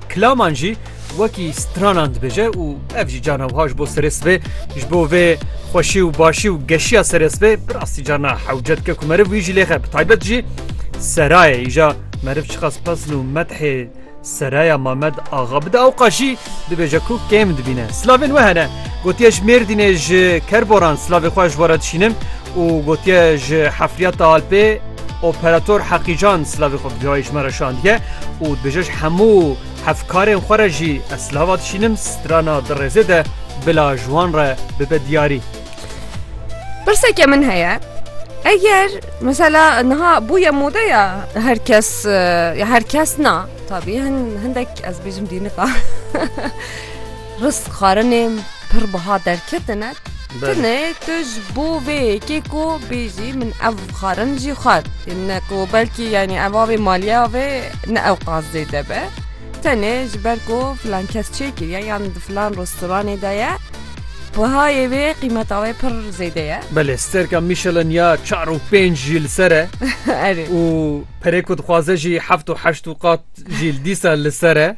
Klaman jî wekî stranan dibêje û ev jî carna wiha ji bo serê sibê ji bo vê xweşî û başî û geşiya serê sibê bi rastî carna hewce dike ku meriv wî jî lêxe bi taybet jî serayê îja meriv çiqas pesn û methê seraya Mamed axa bide ewqa jî dibêje ku kêm dibîne. Silavên we hene gotiye ji Mêrdînê ji Kerboran silavê xwe ji we re dişînim û gotiye ji hefriyata Alpê operator heqîcan silavê xwe bi cihayê ji me re şandiye û dibêje ji hemû hevkarên xwe re jî ez silava dişînim strana di rêzê de bila ji wan re bibe diyarî. Pirseke min heye eger mesela niha bûye modeya her kes ya her kes na tabî hin hindek ez bêjim dînika Risk xwarinên pir biha derketine. Tune tu ji bo vê yekê ku bêjî min ev xwarin jî xwar ne ku belkî yanî ev avê maliya vê ne ew qas zêde be. Tenê ji ber ku filan kes çê kiriye yan di filan restoranê de ye bihayê vê qîmeta wê pir zêde ye. Belê stêrka Michelin ya çar û pênc jî li ser e. Erê. Û perê ku dixwaze jî heft û heşt û qat jî dîsa li ser e.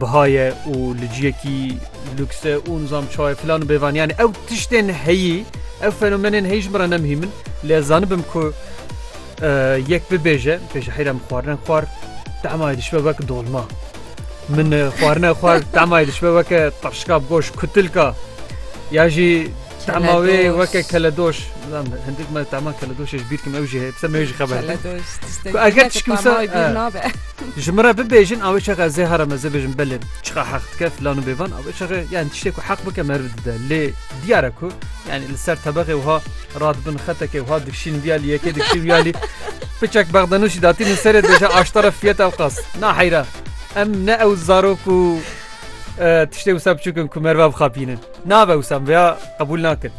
biha ye û li ciyekî lûks e û nizam çawa ye filan û bêvan yanî ew tiştên heyî ew fenomenên heyî ji min re ne muhîm in lê ez zanibim ku yek bibêje pêşî heyra min xwarine xwar temayê dişibe wek dolma min xwarine xwar temayê dişibe weke taşka bi goş kutilka ya jî Tahma wê weke keledoş hindik me tahma keledoşê ji bîrkim ew jî heye pise me jî xeber ku eger tişkim ji min re bibêjin awê çaka zê hara me zê bêjin belê çiqa heq dike filan û bêvan awê çaxe yani tiştê ku heq bike me dide lê diyare ku yani li ser tebexê wiha radibin xeteke wiha dikşîn viyalî yekê dikşîn viyalî piçek bexdanûşî datî min serê deje aştara fiyeta ew qas na heyra em ne ew zarok û Tiştê wisa biçûk in ku merivê bixapînin. Nabe wisa min vêya qebûl nakin.